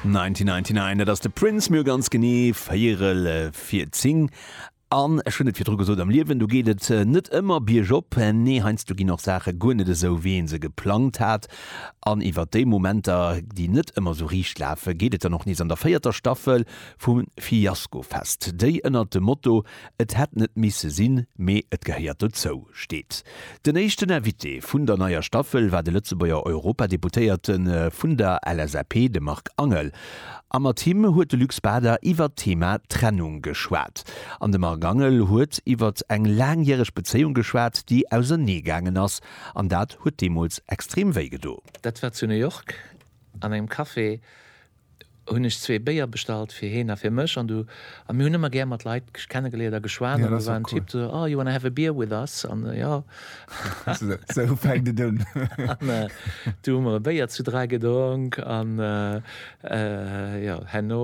1999, dat ass de Prince, mir hu ganz genee véierel fir 10. An ech hunn et virdru gesot, am Liewen, do geet et net ëmmer biergop. Nee, heiansdo ginn och Saache guer net esou, wéi ee se geplangt hat. An iwwer déi Momenter, déi net ëmmer esou riicht lafen, geet et dann och nees an der véierter Staffel vum Fiasko-Fest, déi ënnert dem Motto Et hätt net misse sinn, mee et gehéiert dozou, steet. Den éischten Invité vun der neier Staffel war de Lëtzebuerger Europadeputéierte vun der LSAP, de Marc Angel. A mat him huet de Luc Spada iwwert d'Thema Trennung geschwat. An de Marc Angel huet iwwert eng laangjäreg Bezéiung geschwat, déi ausernee gaangen ass. An dat huet deemools extrem wéi gedo. Dat war zu New York an engem Café, hunn ech zwee Béier bestallt fir hien a fir mech an du a mir hunn ëmmer gär mat Leit kennegeléiert a geschwat an do war en Typ do oh you wanna have a beer with us an jo esou fänkt et un an du hu mer e Béier zu dräi gedronk an jo herno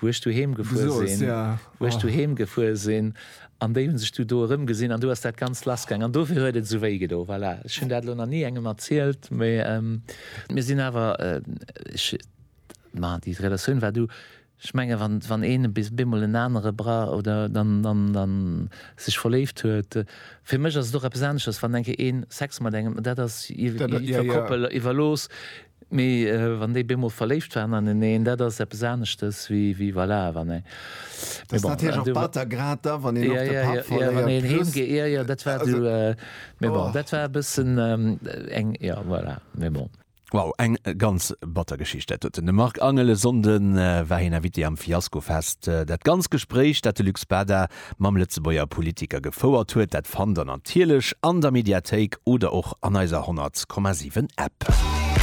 wou ech doheem gefuer sinn, wou ech doheem gefuer sinn, an déi hunn sech du do erëmgesinn an du ass dat Ganzt lassgaang an dofir huet et esou wéi gedo. Voilà, ech hunn dat elo nach ni engem erzielt, mee mir sinn awer, ech, ma déi Relatioun war du, ech menge wann een bis bemol en anere bra oder dann, dann, dann sech verléift huet, fir mech ass et och eppes aneschters, wann enke een Sex mat engem, dat ass iwwer Koppel iwwerlooss, Mee wann déi beemol verléift waren aneneen, dat ass eppes aneschtes wéi, wéi voilà, wann ee. Dat ass natierlech och batter, grad da wann een och de Papp verléiert. Wann een heem geet, jo, jo, dat war du. Mee bon, dat war e bëssen eng, jo, voilà, mee bon. Wow, eng ganz batter Geschicht. Dat huet de Marc Angel. E Sonnde war hien Invité am Fiaskofest. Dat ganzt Gespréich, dat de Luc Spada mam Lëtzebuerger Politiker gefouert huet, dat fannt der natierlech an der Mediathéik oder och an eiser 100,7 App.